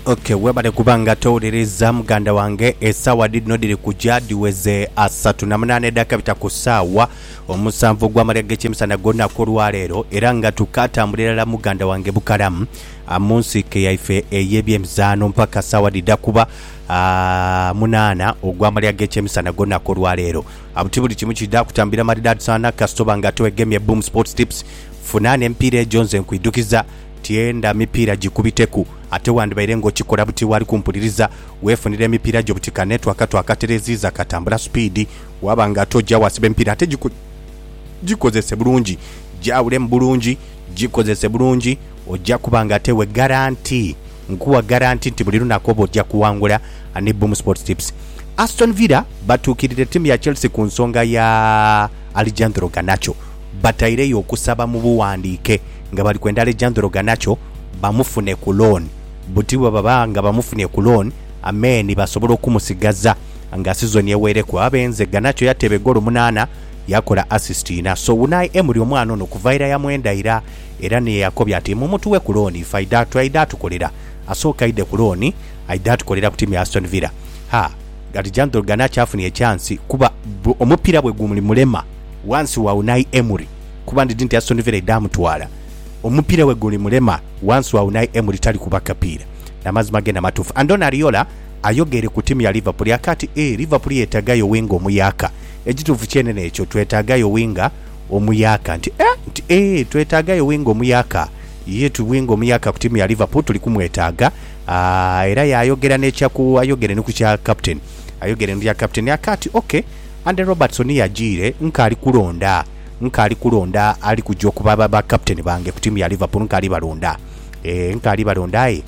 Okay, webale kuba nga towuliriza muganda wange esaawa dhidhino dhiri kuja dhiweze asatu na munaana eddaaka bita ku saawa omusanvu ogw'amalya g'ekyemisana gw'olunaku olwaleero era nga tukatambula irala muganda wange bukalamu ah, mu nsiike yaife ey'ebyemizaano mpaka saawa dhidha kuba ah, munaana ogw'amalya g'ekyemisana gw'olunaku olwaleero abuti buli kimu kidha kutambira maridaadi sana kasitoba nga twegemye boom sports tips funa n'emipiira egyo nze nkwidhukiza Tienda mipiira gikubiteku. Ate wandibaire ng'okikola buti waali kumpuliriza. Weefunire emipiira gyo buti kane twaka twakatereziiza katambula supiidi. Waaba nga ate oja waasiba emipiira ate giko, gikozese bulungi. Gyawulemu bulungi, gikozese bulungi. Oja kuba nga ate we garanti. Nkuwa garanti nti buli lunaku oba oja kuwangula. Ani Boom Sports Tips. Aston Villa batuukirira ttiimu ya Chelsea ku nsonga ya Alejandro Garnacho bataireyo okusaba mu bughandiike nga bali kwenda Alejandro Garnacho bamufune ku loan. Buti bwe baba nga bamufunye ku loan, Ameen basobola okumusigaza nga sizoni eweereku. Abe nze, Garnacho yateeba egoolo munaana, yakola assist ina. So Unai Emery omwana ono kuva ira yamwenda ira era ni ye yakobye ati mumutuwe ku loan ife aidhe atu, aidhe atukolera. Asooke aidhe ku loan aidhe atukolera ku tiimu ya Aston Villa. Ha, Alejandro Garnacho afunye chance kuba omupiira bwe gumulema. Wansi wa Unai Emery kuba ndidhi nti Aston Villa idha mutwala. Omupira we guli mulema wansi wa Unai Emery tali kuba kapiira. Namazima genda matuufu. Andoni Ariola ayogeire ku tiimu ya Liverpool ya kati eeh Liverpool yetaaga yo winga omuyaaka. Ekituufu kyene nekyo twetaaga yo winga omuyaaka nti eeh nti eeh twetaaga yo winga omuyaaka yee tu winga omuyaaka ku tiimu ya Liverpool tuli kumwetaaga aah era yayogera nekya ku ayogere ni ku kya captain ayogere ni ku kya captain ya kati ok. Andy Robertson yajiire nkaali kulonda nkaali kulonda ali kuja okuba ba captain bange ku tiimu ya Liverpool nkaali balonda eeh nkaali balonda aye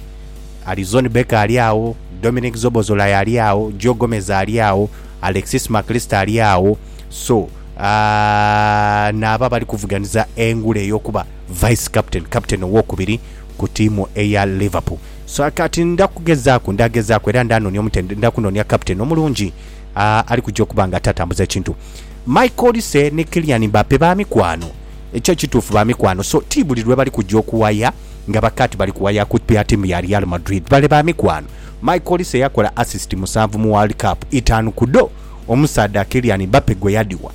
Alizon Becker ali agho, Dominic Szoboszlai ali agho, Joe Gomez ali agho, Alexis Mac Allister ali agho so aah naabo abali kuvuganiza engule ey'okuba vice captain, captain owokubiri ku tiimu eya Liverpool so kati nda kugezaaku nda gezaaku era nda nonia omutendesi nda kunonia captain omulungi. ali kuja okuba nga atatambuza kintu. Mike Olise ni Kylian Mbappe ba mikwano. Ekyo kituufu ba mikwano. So, ti buli lwe bali kuja okuwaya nga baka ti bali kuwaya kupiha tiimu ya Real Madrid. Bale ba mikwano. Mike Olise yakola assist musanvu mu World Cup, itaanu ku dho omusaadha Kylian Mbappe gwe yadhiwa.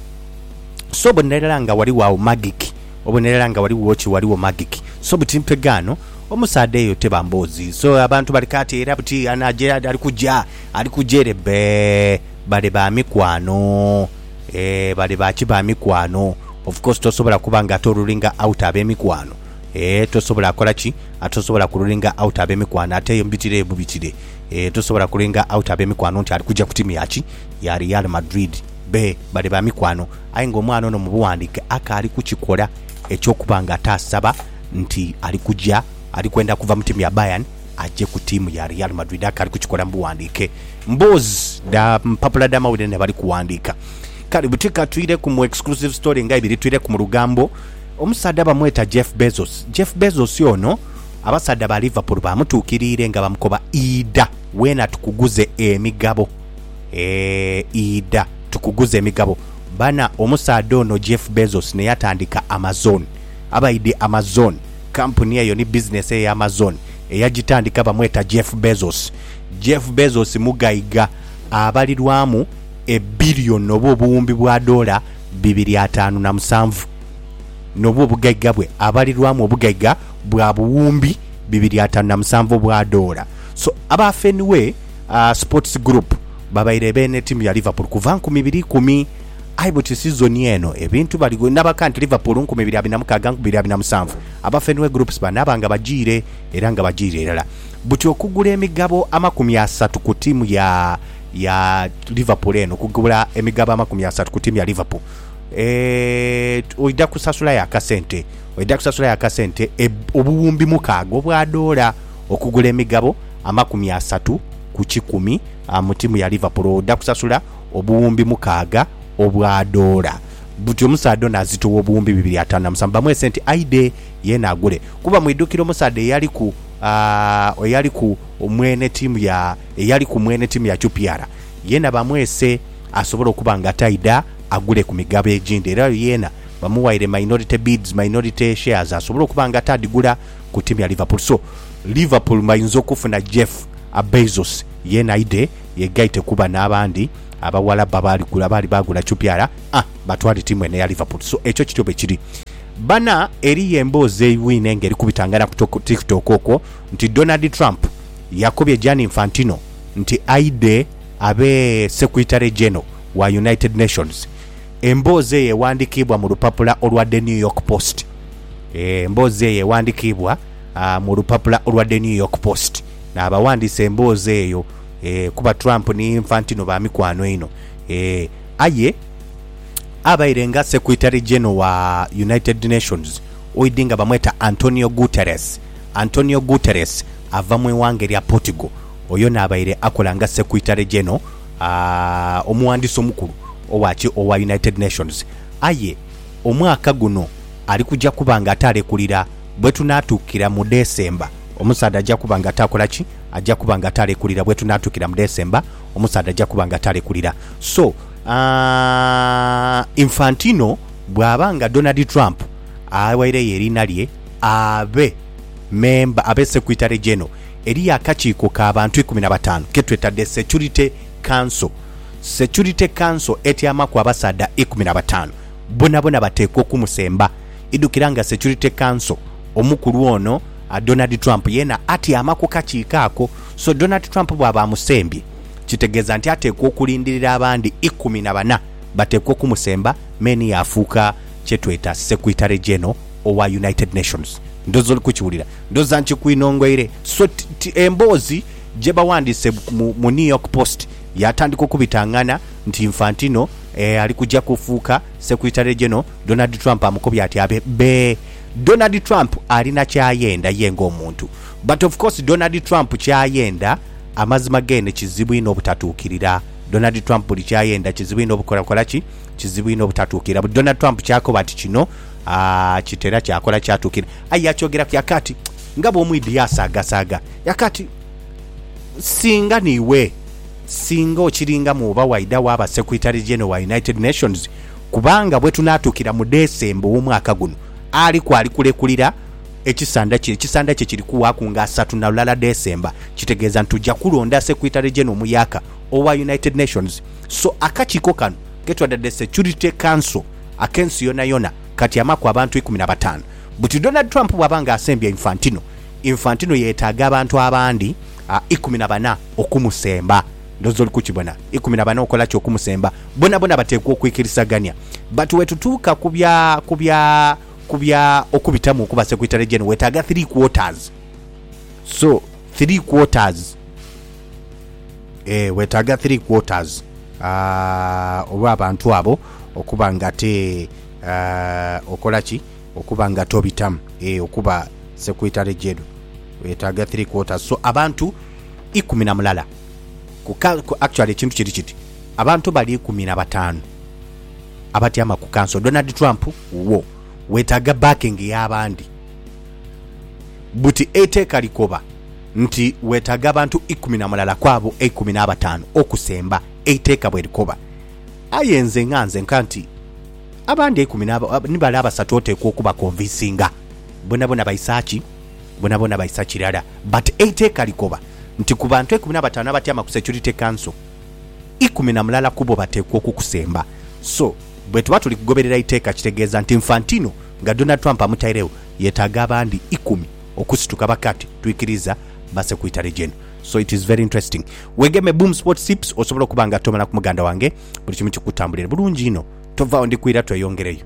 So, obonera irala nga ghaligho agho magic. Obonera irala nga ghaligho ki, ghaligho magic. So, buti mpegaano, omusaadha eyo teba mboozi. So, abantu bali kaati era buti anaaja ali kuja. Ali kuja ere bee bale ba mikwano eeh bale ba ki ba mikwano of course tosobola kuba nga ate orulinga out abemikwano eeh tosobola kola ki ate tosobola ku rulinga out abemikwano ate eyo mubitire eyo mubitire eeh tosobola ku rulinga out abemikwano nti ali kuja ku timu ya ki ya real madrid bee bale ba mikwano aye nga omwana ono mubuwandike akaali ku kikola ekyokuba nga ate asaba nti ali kuja ali kwenda kuva mu timu ya bayern aje ku tiimu ya Real Madrid akaali kukikola mu bughandiike mboozi dha mpapula dh'amawulire n'abali kughandiika. Kale buti ka twirheku mu exclusive story nga ibiri. Twirheku mu lugambo omusaadha bamweta Jeff Bezos. Jeff Bezos ono abasaadha ba Liverpool baamutuukiriire nga bamukoba idha weena tukuguze emigabo. Eeh idha tukuguze emigabo. Bana omusaadha ono Jeff Bezos n'eyatandika Amazon. Abaidhi Amazon Kampuni eyo ni bizinesi eye Amazon. Eyagitandika bamweta Jeff Bezos. Jeff Bezos mugaiga abalirwamu ebillion oba obuwumbi bwa doola bibiri ataanu na musanvu. Nobwo obugaiga bwe abalirwamu obugaiga bwa buwumbi bibiri ataanu na musanvu obwa doola. So aba Fenway Sports Group babaire beene tiimu ya Liverpool kuva nkumi ibiri ikumi Aye buti sizoni eno ebintu bali nabaka nti Liverpool nkumi ibiri abiri na mukaaga nkumi ibiri abiri na musanvu aba Fenway Groups banaaba nga bajiire era nga bajiire irala buti okugula emigabo amakumi asatu ku tiimu ya ya Liverpool eno okugula emigabo amakumi asatu ku tiimu ya Liverpool eeh oidha kusasulayo akasente oidha kusasulayo akasente obuwumbi mukaaga obwa doola okugula emigabo amakumi asatu ku kikumi mu tiimu ya Liverpool oidha kusasula obuwumbi mukaaga obwa doola. Butyo omusaadha ono azitowa obuwumbi bibiri ataanu na musanvu bamuwe sente aidhe yeene agule. Kuba mwidhukire omusaadha eyaliku, aah, eyaliku mwene ttiimu ya, eyaliku mwene ttiimu ya QPR? Yeena bamwese asobole okuba nga taidha agule ku migabo egindi. Era oyo yeena bamuwaire minority bids, minority shares, asobole okuba nga atadhigula ku ttiimu ya Liverpool. So, Liverpool bainza okufuna Jeff Abezos yeena aidhe Yegaite kuba nabandi abawalabu abaali gula abaali bagula chupyara a batwale tiimu eno eya Liverpool so ekyo kityo bwekiri bana eriyo emboozi eibwine nga erikubitangana ku tiktok okwo nti Donald Trump yakobye Gianni Infantino nti aidhe abe Sequitary Geno wa United Nations emboozi eyo ewandikiibwa mu lupapula olwa The New York Post emboozi eyo ewandikiibwa mu lupapula olwa The New York Post. n'abawandiisa emboozi eyo, ee, kuba Trump ni Infantino ba mikwano einho, ee, aye abaire nga Secretary General wa United Nations oidi nga bamweta Antonio Guterres, Antonio Guterres ava mu ighanga erya Portugal, oyo n'abaire akola nga Secretary General, aa, omuwandiisi omukulu owa ki? Owa United Nations. Aye omwaka guno ali kuja kuba nga ate alekulira. Bwetunaatuukira mu Desemba, omusaadha aja kuba nga taakola ki? Aja kuba nga taalekulira. Bwetunaatuukira mu Desemba, omusaadha aja kuba nga taalekulira. So, aah, Infantino bw'aba nga Donald Trump awaireyo eriina lye abe memba, abe Secretary General, eriyo akakiiko ka bantu ikumi na bataanu ke tweta The Security Council. Security Council etyamaku abasaadha ikumi na bataanu. Bonabona bateekwa okumusemba. Idhukira nga Security Council omukulu ono Donald Trump yeena atyama ku kakiiko ako. So Donald Trump bwaba amusembye, kitegeeza nti ateekwa okulindirira abandi ikumi na bana bateekwa okumusemba me ni yaafuuka kye tweta Secretary General owa United Nations. Ndhooza oli kukiwulira. Ndhooza nkikwinhongoire. So emboozi gye bawandiise mu New York Post yaatandika okubitangana nti Infantino ali kuja kufuuka Secretary General. Donald Trump amukobye ati abe bee Donald Trump alina kyayenda ye nga omuntu but of course Donald Trump kyayenda amazima geene kizibu inho obutatuukirira Donald Trump buli kyayenda kizibu inho obukola kola ki kizibu inho obutatuukirira buli Donald Trump kyakoba ati kino aah kitera kyakola kyatuukirira aye yakyogeraku yaka ati nga bwomwidhi yasaaga saaga yaka ati singa niiwe singa okiringamu oba waidha waaba Secretary General wa United Nations Kubanga bwe tunaatuukira mu Ddesemba ow'omwaka guno, ali kwali kulekulira ekisanda kye. Ekisanda kye kiri kuwaaku nga asatu na lulala Ddesemba, kitegeeza nti tuja kulonda Secretary General omuyaaka owa United Nations. So akakiiko kano ke twadadde Security Council ak'ensi yonayona katyamaku abantu ikumi na bataanu. Buti Donald Trump bw'aba nga asembya Infantino, Infantino yeetaaga abantu abandi ikumi na bana okumusemba. Ndhoozi oli kukibona. Ikumi na bana okola ki okumusemba? Bonabona bateekwa okwikirisagania. But wetutuuka ku bya, ku bya, ku bya okubitamu okuba Secretary General, wetaaga three quarters. So, three quarters. Eeh, wetaaga three quarters, aah, olw'abantu abo okuba nga te, aah, okola ki? Okuba nga tobitamu, eeh, okuba Secretary General. Wetaaga three quarters. So, abantu ikumi na mulala. ku ka, ku actually ekintu kiri kiti, abantu bali ikumi na batanu abatyama ku kanso. Donald Trump wuwo wetaga backing ya bandi buti eiteeka likoba nti wetaga abantu ikumi na mulala kwabo eikumi na batanu okusemba eiteeka bwerikoba. Aye nze nga nze nka nti abandi eikumi na, ni bale abasatu oteekwa okubakonvinsinga. Bonabona baisa ki? bonabona baisa kirala but eiteeka likoba nti ku bantu eikumi nabatano abatyama ku security council, ikumi namulala kubo bateekwa okukusemba so bwetuba tuli kugoberera iteeka kitegeeza nti Infantino nga Donald Trump amutairegho yetaaga abandi ikumi okusituka bakati twikiriza base ku itale gyeeno so it is very interesting wegeme Boom Sports Tips osobola okuba nga tomala ku muganda wange buli kimu kikutambulire bulungi inho tovagho ndikwiira tweyongereyo.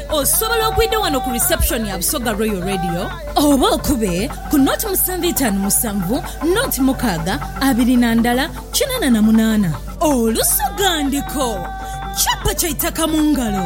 Osobola okwidha wano ku reception ya Busoga Royal Radio oba okube ku nought musanvu itaanu musanvu nought mukaaga abiri na ndala kinaana na munaana. Olusoga ndiko, kyapa kya itaka mu ngalo.